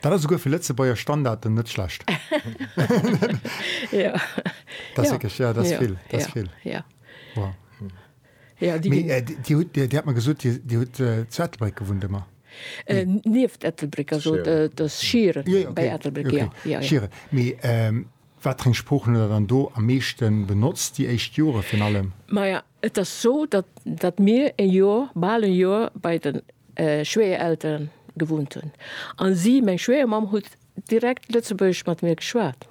Dat ass souguer fir Lëtzebuerger Standarden net schlecht. Dir hat mer gesot, Dir hutt zu Ettelbréck gewunnt ëmmer? Nieft Ettelbréck, also et ass Schieren bei Ettelbréck. Schieren. Mee wat fir eng Sproochen hutt Der dann do am meeschte benotzt, déi éischt Jore virun allem? Maja, Et ass sou, datt mir e Joer, bal e Joer bei de Schwéierelteren gewunnt hunn. A si, meng Schwéiermamm, huet direkt Lëtzebuergesch mat mir geschwat.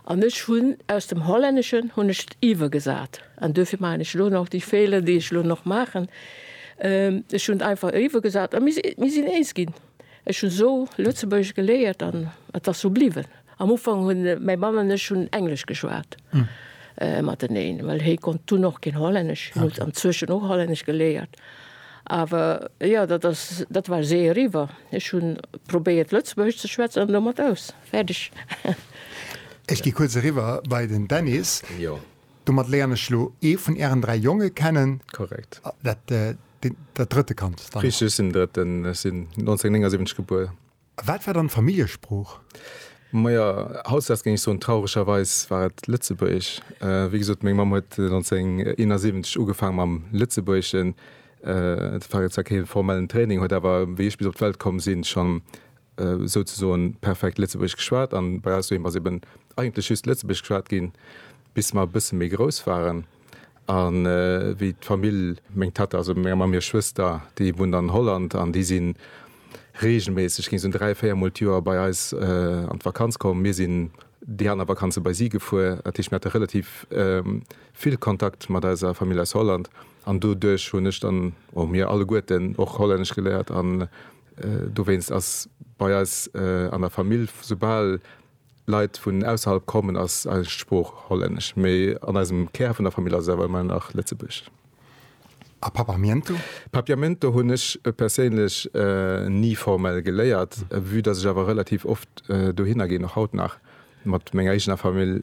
An ech hunn aus dem Hollänneschen hunn ech et iwwergesat. An duerfir maachen ech elo nach déi Feeler, déi ech elo nach maachen. Ech hunn et einfach iwwergesat a mir sinn eens ginn. Ech hunn esou Lëtzebuergesch geléiert an et ass esou bliwwen. Am Ufank hunn mäi Mann an ech hunn Englesch geschwat mateneen, well hie konnt dunn och keen Hollännesch, hien huet anzwëschen och Hollännesch geléiert. Awer jo, dat ass, dat war esou eriwwer. Ech hunn probéiert Lëtzebuergesch ze schwätzen an domat aus. Fäerdeg. Ech gi kuerz eriwwer bei den Dennis. Domat léieren ech elo ee vun Ären dräi Jonge kennen. Korrekt. Dat. Dat drëtte Kand dann? Richteg, ech sinn den Drëtten. Ech sinn 1979 gebuer. A wat war dann d'Familljesprooch? Majo, hautdesdaags géing ech soen, trauregerweis war et Lëtzebuergesch. Wéi gesot, meng Mamm huet 1971 ugefaang mam Lëtzebuergeschen. Dat war zwar kee formellen Training, huet awer, wéi ech bis op d'Welt komm sinn, schonn souzesoen perfekt Lëtzebuergesch geschwat. An bei eis doheem ass eben eigentlech just Lëtzebuergesch geschwat ginn, bis mer e bësse méi grouss waren. An wéi d'Famill, meng Tatta, also meng Mamm hir Schwëster, déi wunnt an Holland an déi si reegelméisseg, gi se dräi, véier Mol d'Joer bei eis an d'Vakanz komm. Mir sinn déi aner Vakanze bei si gefuer. Dat heescht, mir hate relativ vill Kontakt mat eiser Famill aus Holland an doduerch hunn ech dann, oder mir alleguerten, och Hollännesch geléiert. An dowéinst ass bei eis an der Famill, soubal, Leit vun ausserhalb kommen, ass eis Sprooch hollännesch, mee an eisem Kär vun der Famill ass et awer ëmmer nach Lëtzebuergesch. A Papiamento? Papiamento hunn ech perséinlech ni formell geléiert, vue dass ech awer relativ oft dohinner ginn, och haut nach mat menger eegener Famill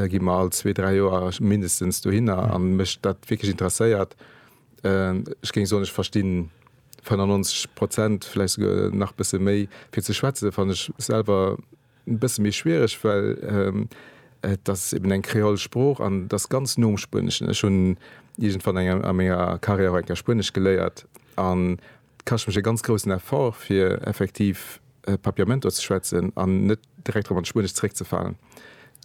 gi mer all zwee, dräi Joer mindestens dohinner a mech dat wierklech interesséiert, Ech géing soen, ech verstinn 95 Prozent, vläicht souguer nach e bësse méi. Fir ze schwätze fannen ech selwer e bësse méi schwiereg, well et ass eben eng kreol Sprooch an et ass ganz no um Spueneschen. Ech hunn iergendwann a menger Karriär och eng Kéier Spuenesch geléiert. Et kascht mech e ganz groussen Effort, fir effektiv Papiamento ze schwätzen an net direkt erop an d'Spuenescht zeréckzefalen.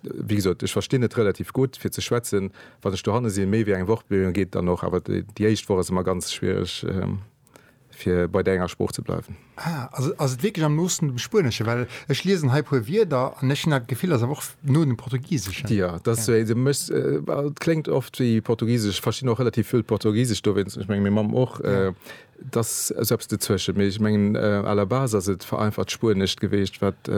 Wéi gesot, ech verstinn et relativ gutt, fir ze schwätzen, wann ech dohanne sinn. Méi wéi eng Woch geet dann och, awer déi éischt Woch ass ëmmer ganz schwiereg, fir bei där enger Sprooch ze bleiwen. Ah, also ass et wierklech am noosten dem Spuenesche? Well ech liesen hei e puer Wierder an ech hunn dat Gefill, dat ass awer och no dem Portugiseschen. Jo, dat ass wéi, et kléngt oft wéi Portugisesch. Ech verstinn och relativ vill Portugisesch dowéinst, ech mengen, meng Mamm och. Et ass esou eppes dozwëschen, mee ech mengen à la base ass et vereinfacht Spuenescht geweecht, wat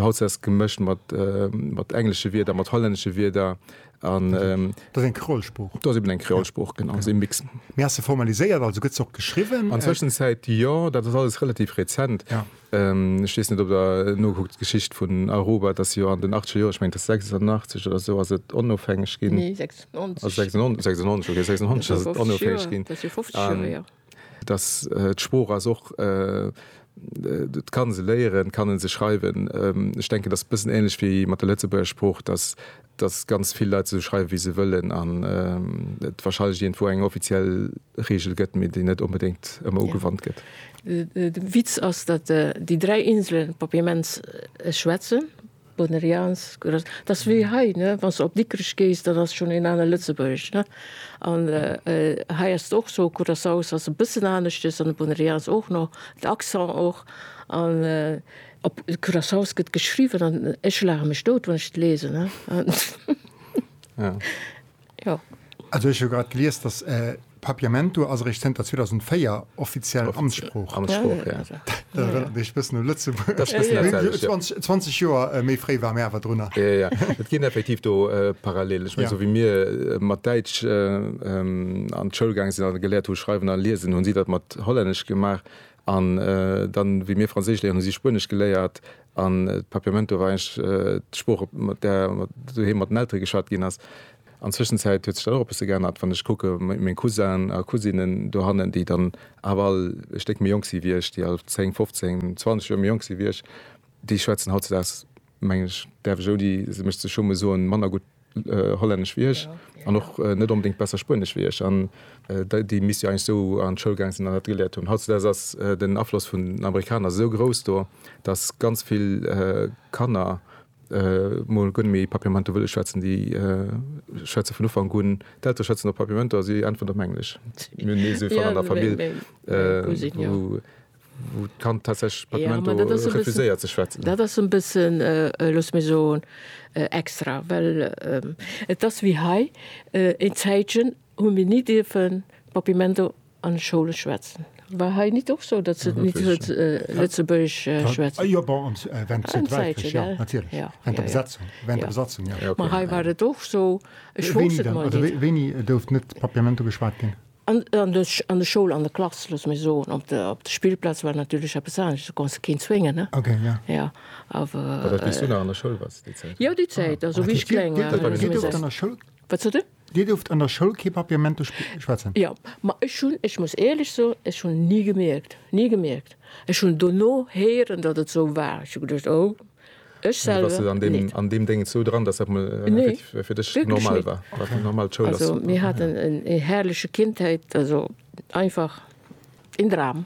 hautses gemëscht mat englesche Wierder, mat hollännesche Wierder an. Dat ass eng Kreolsprooch. Dat ass eben eng Kreolsprooch, genau, ass ee Mix. Mee ass se formaliséiert, also gëtt se och geschriwwen? An Zwëschenzäit jo, dat ass alles relativ rezent. Ech weess net ob der nokuckt, d'Geschicht vun Aruba, et ass jo an den achtege Joren, ech mengen et ass 86 oder esou ass et onofhängeg ginn. Nee 96. 96, 96, okay 96 ass et onofhängeg ginn. Dat ass jo 50 Joer héier. Dass d'Sprooch ass och, et kann e se léieren, et kann e se schreiwen. Ech denken, et ass e bëssen änlech wéi mat der Lëtzebuerger Sprooch, dass dass ganz vill Leit esou schreiwe wéi se wëllen an et wahrscheinlech iergendwou eng offiziell Reegel gëtt, mee déi net onbedéngt ëmmer ugewannt gëtt. De Witz ass, datt déi dräi Inselen Papiaments schwätzen, Bonerians, Gros. Dat ass wéi hei, ne, wann s de op Dikrech gees, dann ass schonn een anere Lëtzebuergesch, ne. An hei ass et och esou, Curaçao ass e bëssen aneschters an de Bonerians och nach, d'Accent och an. Op Curaçao's gëtt geschriwwen an ech laache mech dout, wann ech et lesen. Jo. Also ech hu grad gelies, dass Papiamento ass eréischt zënter 2004 offiziell Amtssprooch. Amtssprooch, jo. Dat erënnert mech e bëssen u Lëtzebuerg. Dat ass e bëssen dat selwecht, jo. 20 Joer méi fréi ware mir awer drunner. Jo, jo, et ginn effektiv do Parallelen. Ech mengen, esou wéi mir mat Däitsch an d'Schoul gaange sinn a geléiert hu schreiwen a liesen, hunn si dat mat Hollännesch gemaach. An dann, wéi mir Franséisch léieren, hu si Spuenesch geléiert. An d'Papiamento war eigentlech d'Sprooch, mat där doheem mat den Eltere geschwat ginn ass. An Zwëschenzäit huet sech dann och e bësse geännert, wann ech kucke meng Cousin a Cousinen dohannen, déi dann awer all e Stéck méi jonk si wéi ech, déi all 10, 15, 20 Joer méi jonk si wéi ech, déi schwätzen hautzedags, mengen ech, däerf ech ouni mech ze schummen soen, manner gutt Hollännesch wéi ech an och net onbedéngt besser Spuenesch wéi ech. An déi misst jo eigentlech esou an d'Schoul gaang sinn an dat geléiert hunn. Hautzudeis ass den Afloss vun den Amerikaner esou grouss do, datt ganz vill Kanner mol guer net méi Papiamento wëlle schwätzen. Déi schwätze vun Ufank un, d'Eltere schwätzen op Papiamento a si äntweren op Englesch. Mir hunn ee sou ee Fall an der Famill, wou wou d'Kand tatsächlech per Memento refuséiert ze schwätzen. Dat ass e bëssen, loosse mir soen, extra, well et ass wéi hei, Een Zäitchen hu mir ni dierfen per Memento an de Schoule schwätzen. War hei nit och sou, datt se nit Lëtzebuergesch schwätzen? Jo, bon, an Zäitchen, jo, natierlech, jo, jo, jo. Ma hei war et och sou, ech wosst et mol nit. Wéini gouf net per Memento geschwat ginn? An der Schoul, an der Klass, looss mir soen, op der Spillplaz war natierlech eppes anescht, do konns de keen zwéngen, ne? Okay, ja. Ja, awer. War dat, wéi s du nach an der Schoul waars, déi Zäit? Jo, déi Zäit, also wéi ech kleng war. Dir duerft an der Schoul. Wat sot de? Dir duerft an der Schoul kee Papier Mento schwätzen? Jo, ma ech hunn, ech muss éierlech soen, ech hunn ni gemierkt, ni gemierkt. Ech hunn dono héieren, datt et esou war. Ech hu geduecht, oh. Ech selwer net. Mee bass de an deem Déngens esou dran, datt dat mol effektiv fir dech normal war? Wierklech net. War normal, d'Schoul ass super. Also mir haten ee herrleche Kindheit, also einfach een Dram.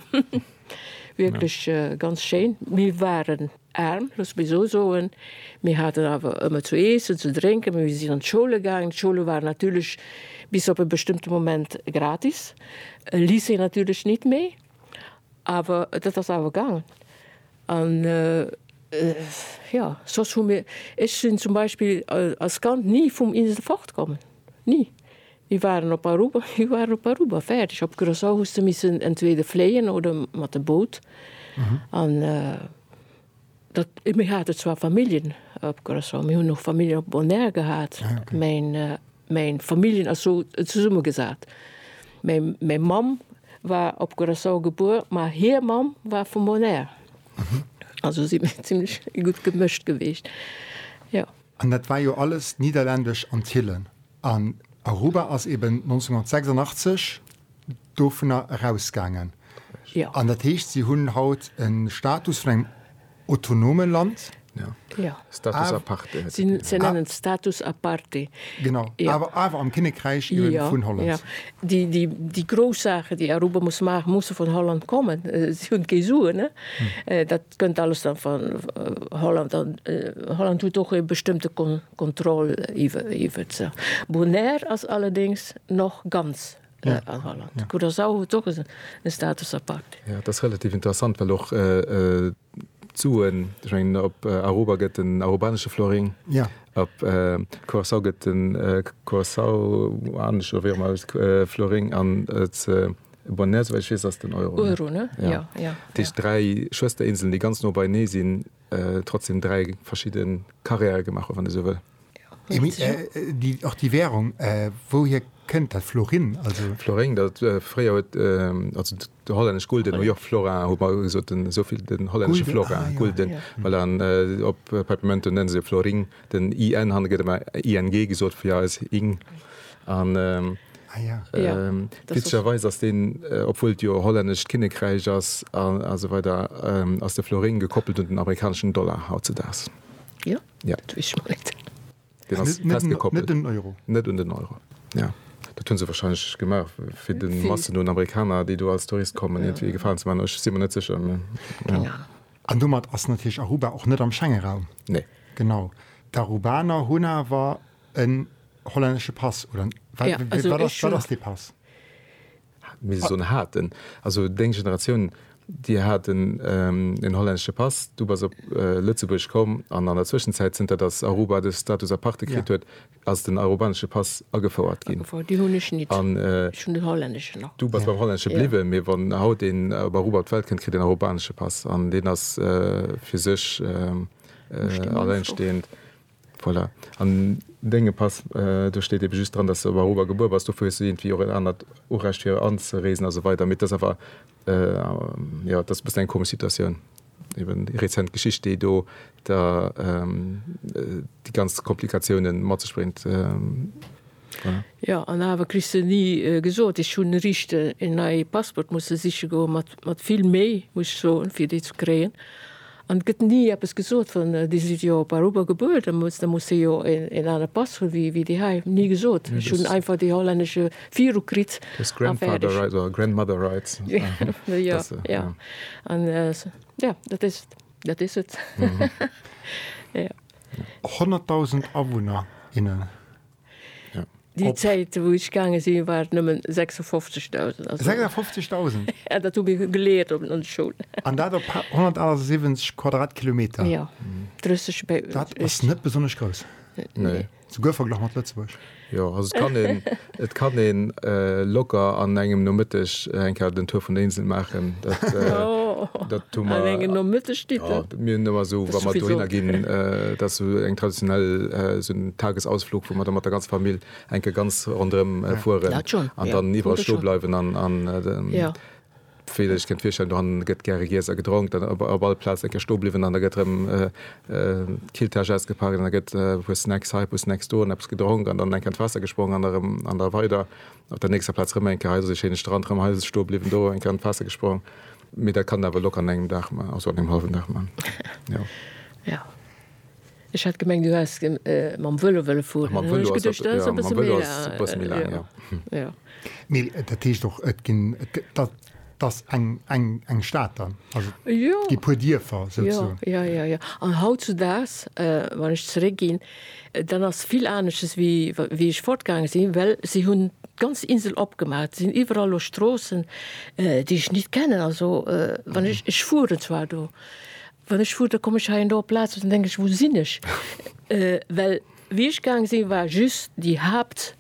Wierklech ganz schéin. Mir waren aarm, loosse mir esou soen. Mir haten awer ëmmer ze iessen, ze drénken. Mir sinn an d'Schoule gaangen. D'Schoule waren natierlech bis op e bestëmmte Moment gratis. Lycée natierlech nit méi, awer dat ass awer gaangen. An jo, soss hu mir, ech sinn zum Beispill als Kand ni vum Insel fortkommen, ni. Mir waren op Aruba, mir waren op Aruba, fäerdeg. Op Curacao hues de missen entweder fléien oder mat dem Boot. An dat, mir hate zwar Familljen op Curacao, mir hunn och Familljen op Bonaire gehat, mä Mäin Familljen ass sou zesumme gesat. Mäin Mamm war op Curaçao gebuer, ma hir Mamm war vum Bonaire. Also si mir zimlech gutt gemëscht geweecht, jo. An dat war jo alles Niederländesch Antillen. An Aruba ass eben 1986 dovunner erausgaangen. Jo. An dat heescht, si hunn haut e Status vun engem Autonome Land, jo. Jo. Status aparte hätt et ginn. Se nennen et Status aparte. Genau, awer, awer am Kinnekräich eben Jo, vun Holland. jo. Déi, déi, déi grouss Saachen, déi Aruba muss maachen, musse vun Holland kommen. Si hunn kee Suen, ne? Dat kënnt alles dann van Holland. An Holland huet och ee bestëmmte Kon, Kontroll iwwe, iwwert se. Bonaire ass allerdéngs nach ganz an Holland. Ja. Gutt ass awer och e Status apact. Ja, dat ass relativ interessant, well och d'Suen, ech mengen op Aruba gëtt den arubanesche Florin, Ja. op Curaçao gëtt den curaçaoanesche, oder wéi och ëmmer eist, Florin an zu Bonaire, souwäit ech weess, ass den Euro, ne? Euro, ne? Ja. Ja, ja. Dat heescht dräi Schwësterinselen, déi ganz no beinee sinn, trotzdem dräi verschidde Carrièren gemaach hunn, wann ee sou wëll. Och déi Währung, wouhier kënnt dat? Florin? Florin, dat fréier huet, also de hollännesch Gulden, hu jo och Florin, hu mer gesot, esou vill den hollännesche Florin, Gulden, voilà, an op Peppermënten nenne se jo Florin, den in han, gëtt ëmmer ing gesot fir eis, ing, an witzegerweis ass deen, obwuel et jo e hollännescht Kinnekräich ass a sou weider, ass de Florin gekoppelt un den amerikaneschen Dollar hautzedaags. Ja. Dat weess ech mol net. Deen ass Net- net- festgekoppelt. net den Euro. Net un den Euro. Ja. Dat hunn se warscheinlech gemaach, fir de Vill. Massen un Amerikaner, déi do als Tourist kommen, iergendwéi ee Gefalen ze maachen. Ech si mer net sécher, mä Keng Ahnung. An domat ass natierlech Aruba och net am Schengenraum. Nee. Genau. D'Arubaner hunn awer en hollännesche Pass, oder wat, Ja, also wat ass, ech wat hunn. ass dee Pass? misst ech soen, haten, also deng Generatioun, déi hat en hollännesche Pass, du bass op Lëtzebuerg komm an an der Zwëschenzäit, zënter datt Aruba de Status aparte kritt huet, ass den arubanesche Pass agefouert ginn. Agefouert, deen hunn ech nit. An. Ech hunn den hollännesche nach. Du bass beim hollännesche bliwwen, mee wann haut een op Aruba op d'Welt kënnt, kritt en arubanesche Pass an deen ass fir sech allengstehend. Voilà. An dengem Pass, do steet ebe just dran, dass de op Aruba gebuer bass. Dofir hues de iergendwéi och en anert Urecht fir anzereesen a sou weider. Mee et ass awer, jo, et ass e bëssen eng komesch Situatioun. Eben déi rezent Geschicht, déi do da déi ganz Komplikatiounen mat sech bréngt. Jo an awer kriss de ni gesot. Ech hunn riicht en neie Passport musse siche goen, mat mat vill Méi muss ech soen, fir dee ze kréien. An et gëtt ni eppes gesot wann Dir sidd jo op Aruba gebuer, da muss da muss Dir jo en en anere Pass hunn wéi wéi déi hei. Ni gesot. Ech hunn einfach déi hollännesche viru kritt a fäerdeg. Grandmother rights. Jo jo an jo dat is et dat is et. Jo. 100.000 Awunner, innen. Déi Zäit wou ech gaange sinn war et nëmmen 56.000, also. 56.000? Ja, dat hu mir geleert op an der Schoul. An dat op 178 Quadratkilometer? Jo, 30 Be. Dat ass net besonnesch grouss. Nee. Souguer verglach mat Lëtzebuerg. Jo, also et kann een, et kann een locker an engem Nomëtteg eng Kéier den Tour vun der Insel maachen. Dat, dat hu mer. An engem Nomëtteg, Dieter? Mir hunn ëmmer esou, wa mer dohinner ginn, dat ass esou eng traditionell, esou en Tagesausflug, wou mer da mat der ganzer Famill eng Kéier ganz ronderëm fueren an dann iwwerall stoe bleiwen. An wéi Der Iech kënnt virstellen, dohannen gëtt gäre giess a gedronk, dann op all Plaz eng Kéier stoe bliwwen an da gëtt erëm d'Killtäsch ausgepaacht an da gëtt e puer Snacks hei, e puer Snacks do an eppes gedronk an dann eng Kéier an d'Waasser gesprongen an erëm an da weider op der nächster Plaz erëm eng Kéier hei. Esou e schéine Strand, erëm hei stoe bliwwen, do eng Kéier an d'Waasser gesprong. Mee dat kann der awer locker an engem Dag man, also an engem halwen Dag man, jo. Jo, ech hat gemengt du häss mam Velo wëlle fueren, dann hunn ech geduecht dat ass e bësse méi laang, jo. Mee dat heescht och et ginn, et ass eng Stad dann, also déi puer Dierfer souzesoen? Jo, jo, jo, jo, an hautzudaags, wann ech zeréckginn, Dat ass vill anesches wéi wéi ech fortgaange sinn, well si hunn d'ganz Insel opgemaach. Et sinn iwwerall elo Stroossen, déi ech nit kennen. Also wann ech, ech fueren zwar do, wann ech fuer, da komm ech hei an do op Plazen, dann denke ech, wou sinn ech? Well wéi ech gaange sinn, war just déi Haapt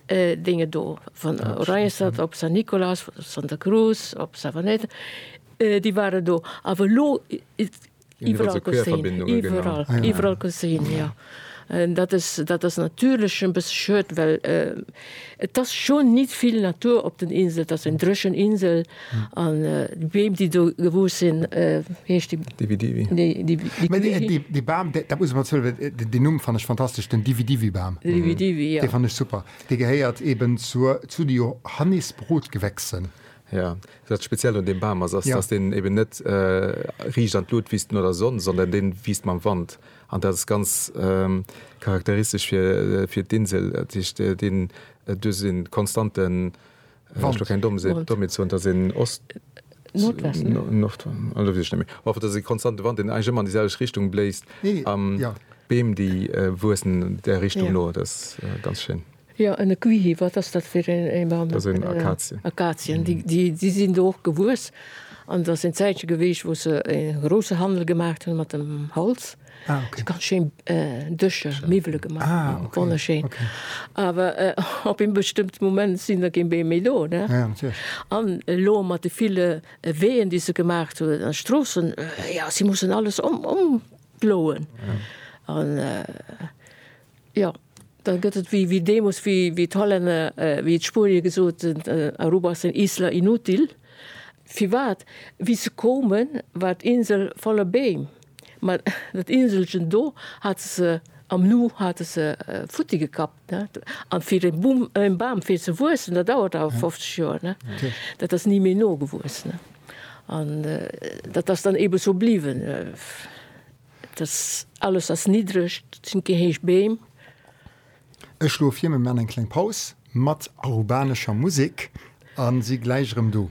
Dinge do, wann Oranjestad, op San Nicolas, Santa Cruz, op Savaneta, déi waren do. Awer elo Iwwerall gesinn, jo. Dat ass natierlech e bësse schued, well et ass schonn nit vill Natur op den Insel, et ass eng dréchen Insel an d'Beem, déi do gewuess sinn, wéi heescht déi? Dividivi. Dee Bam, dat muss ech mol zouginn, deen Numm fannen ech fantastesch, den Dividivi-Bam. Den Dividivi, jo. Dee fannen ech super. Dee gehéiert eeben zu de Johannisbrotgewächsen. Jo, Dat speziellt un deem Bam ass, ass dass deen eben net riicht an d'Lut wiisst no der Sonn, sondern deen wiisst mam Wand. An dat ass ganz charakteristesch fir fir d'Insel. Dat heescht deen duerch en konstanten, ech wëll keng domm sinn, domm et soen, dass en Ost, Nordwest, ne? Nordwend, elo weess ech net méi. Op alle Fall, dass en konstanten Wand, deen eigentlech ëmmer an déi selwecht Richtung bléist, a Beem déi wuessen där Richtung no. Dat ass ganz schéin. Jo, en Equihi, wat ass dat fir ee Bam? Dat sinn Akazien. Akazien, déi sinn do och gewuess. An dat ass en Zäitche geweecht, wou se e grousse Handel gemaacht hunn mat dem Holz. Ah, okay. Ganz schéin Dëscher, Miwwele gemaach. Ah, okay. Wonnerschéin. Okay. Awer op ee bestëmmte Moment sinn der kee Beem méi do, ne? Ja, ja, natierlech. An elo mat de ville Weeën, déi se gemaacht hunn, an Stroossen, jo, si mussen alles ëmploen. Ja. An Jo, da gëtt et wéi deemoos, wéi d'Hollänner, wéi d'Spuenier gesot hunn, Aruba ass eng isla inútil. Firwat? Wéi se koumen, war d'Insel voller Beem, ma dat Inselchen do hate se am Nu hate se futti gekappt. An fir e Bumm, e Bam fir ze wuessen, dat dauert awer 50 Joer. Dat ass ni méi nogewuess. An dat ass dann eebe sou bliwwen. Dass alles ass niddreg, dat sinn kee héich Beem. Ech schlof hie, mir man eng kleng Paus mat arubanescher Musek an si gläich erëm do.